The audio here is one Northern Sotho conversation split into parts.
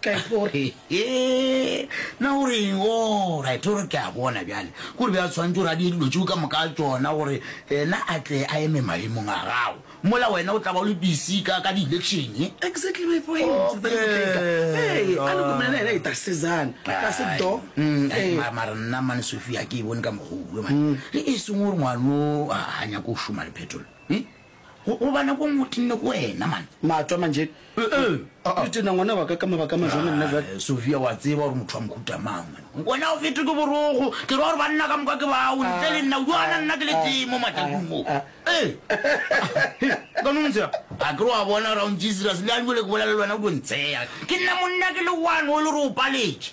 ka itlo gore na o reng orit gore ke a bona bjale gore bja tshwanetse gore a di dilo tšeo ka moka tsona gore ena a tle a eme maemong a gago mola wena o tla ba o le busy ka ka di-election exactly my point mara nna mane sophia ke e bone ka mogolo mane e seng gore ngwano a nyako o šoma le phetolo Go, go bana ko ngwe o tenne ko wena, man. Mato a manje. Uh-uh. Re tena ngwana wa ka ka mabaka a majone nna jwale. Ah, Sofia, wa tseba gore motho wa mohuta mang, man. Wena o fetwe ke borogo. Ke ra gore banna ka moka ke bao, ntle le nna. O duana nna ke le tee mo matlakung mo. Ee. Ka no ntse ya. A ke re wa bona, Round Jesus, le a jwale ke bolela le wena o tlo ntseya. Ke nna monna ke le one o le re o paletše.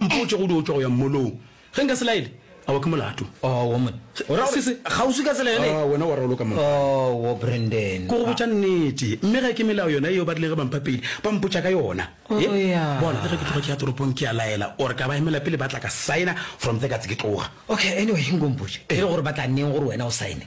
Mpotše go dutšwa go ya mmolong. Ge nka se laele, a wa ke molato. Oh, wo monna. O ra gore, kgauswi ka tsela yone? Oh, wena wa raloka, monna. Oh, wo Brendon. Ke go botša nnete. Mme ge ke melao yona yeo ba rileng ge ba mpha peile, ba mpotša ka yona. Oh, Yep. ya. Bona, le ge ke tloga ke ya toropong, ke a laela, or ka ba emela pele ba tla ka signer, from there ka tse ke tloga. Okay, anyway, nko mpotše. E re gore ba tla neng gore wena o signer?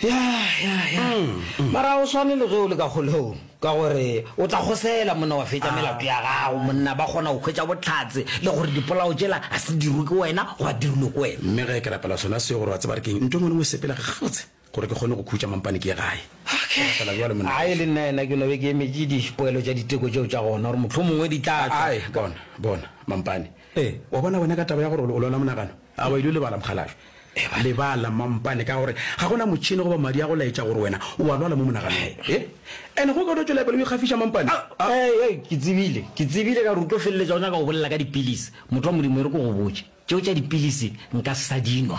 Ya, ya, ya. Mara o swane le ge o le ka kgolegong, ka gore o tla kgosela monna wa fetša melato ya gago. Monna ba kgona go hwetša bohlatse le gore dipolao tšela ga se dirwe ke wena goba dirilwe ke wena. Mme ge ke rapela sona seo gore wa tseba re keng, nto e ngwe le ngwe e sepela gabotse gore ke kgone go khutša mampane ke ye gae. Ke rapela bjalo, monna. Ai, le nna yena ke no be ke emetše dipoelo tša diteko tšeo tša gona gore mohlomongwe di tla tšwa. Ai, bona, bona, mampane. Ee. Wa bona wena ka taba ya gore o lwala monagano? A o ile o lebala, mokgalabje? Eba lebala, mampane, ka gore ga go na motšhene goba madi a go laetša gore wena o a lwala mo monaganong. He? And ge o ka no tšwela pele o ikgafiša, mampane? A, a, a! He, he, ke tsebile, ke tsebile ka gore o tlo feleletša o nyaka go bolela ka dipilisi. Motho wa Modimo, e re ke go botše, tšeo tša dipilisi nka se sa di nwa.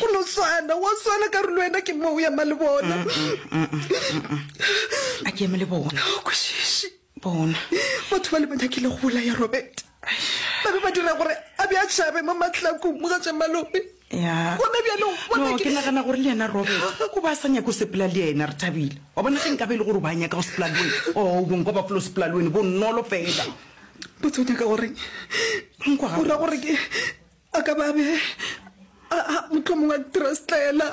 go no swana wa swana ka re le wena ke mo o ya ma le bona a ke eme le bona o kwešiši bona batho ba le ba nyakile go bolaya robert ba be ba dira gore a be a tšhabe mo matlakong mo ga tša malome ya Bona bjale, o bona No, ke- ke nagana gore le yena robert o ba a sa nyake o sepela le yena re thabile wa bona ge nka be e le gore o ba nyaka go sepela le wena o bong kwa bafolo sepela le wena bonolo fela botse o nyaka goreng Nkwa ga o ra gore ke a ka babe motlho mongwe a trustela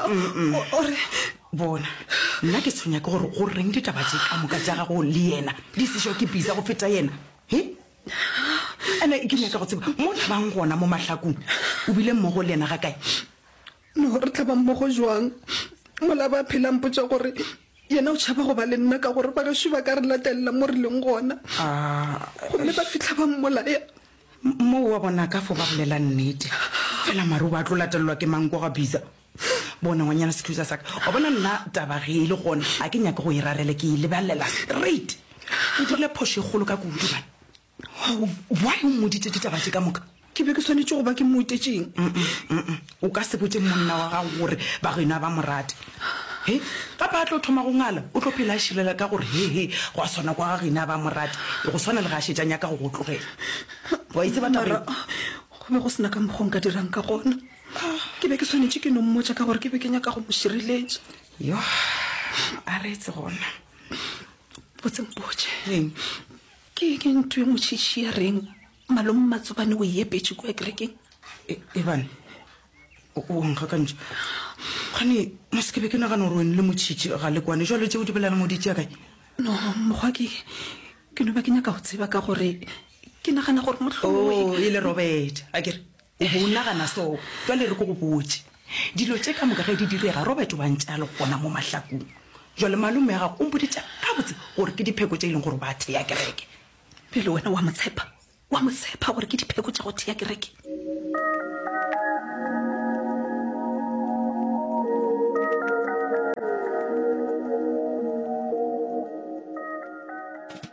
ore bona nna ke tshwenya ke gore go reng ditaba tse ka moka ja gago le yena di sešo ke bisa go feta yena e ande ke nyaka go tseba mo tlhabang gona mo mahlakong o bile mmogo le yena ga kae No re tla ba mmogo jwang? Mola ba phela mpotša gore yena o tšhaba go ba le nna ka gore bagešo ba ka re latelela mo re leng gona. Gomme ba fihla ba mmolaya. Moo wa bona ka fo ba bolela nnete. Fela mare o ba tlo latelelwa ke mang kwa ga Biza? Bona ngwanyana Scusa sa ka. Wa bona nna taba ge e le gona ga ke nyake go e rarela ke e lebelela straight. Ke dirile phošo e kgolo ka kudu man. why o mmoditse ditaba tse ka moka ke be ke swanetse go ba ke mmotetšeng o ka se botse monna wa gago gore ba go ena ba morate he gape a tlo thoma go ngala o tlo phela a šilela ka gore hehe go a swana kwa ga gena ba morate e go swana le ga a šetsanya ka go go tlogela wa itse bataba go be go sena ka mokgong ka dirang ka gona ke be ke swanetse ke no mmotsa ka gore ke be ke nyaka go mo šireletša yo a reetse gona botse mpotse eng Ke eng e ntwi e motšhitšhi ya reng Malome Mmatsobane o e epetše kua kerekeng? E, Ebane, o, o a nkgakantšha. Kgane, mo se ke be ke nagana gore wene le motšhitšhi ga le kwane. Jwale tšeo di bolelang o di tšea kae? No, mogwa ke, ke no ba ke nyaka go tseba ka gore ke nagana gore mohlomongwe. Oo, e le Robert, a ke re? O be o nagana so? Jwale re ko go botše. Dilo tše ka moka ge di direga, Robert o ba ntše a le gona mo mahlakung. Jwale malome wa gago o mpoditše gabotse gore ke dipheko tše e leng gore o ba thea kereke. Bjale wena o a mo tshepa? O a mo tshepa gore ke dipheko tša go thea kereke?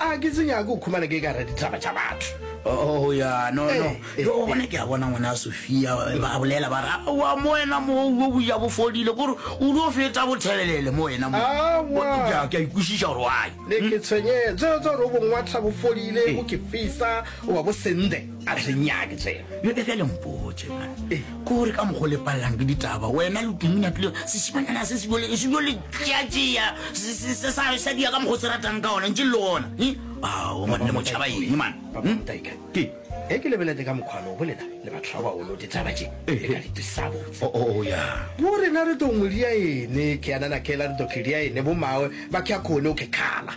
A ke se nyake go khumana ke ekare ditaba tša batho. Oh, ya, no, no. Eh, Yo, eh, gona eh. ke a bona ngwana Sofia, ba bolela ba re, aowa, mo wena mo o boja bo fodile, gore o lo feta bothebelele mo wena mo. Aowa. Ke a- ke a ikwešiša gore why. Ne ke tshwenyetse tsa gore o bongwatlha bo fodile, bo ke fisa, o ba bo sende. a re senyake tsena yo ka bjale mpotse eh. kore ka mokgo le palelang ke ditaba wena lotumina pele sesimanyana se se jo le tšeatšea sa dia ka mokgo se ratang ka ona ntse le gona eh? ao manne motšhaba eng mana hmm? e ke lebelete ka mokgwano bo lena le batho ba bagolo ditaba tse eh, ka ditisabotse oh, oh, oh, bo rena re tongwe dia ene ke yanana kela re tokhe dia ene bo mawe ba kya khone o ke khala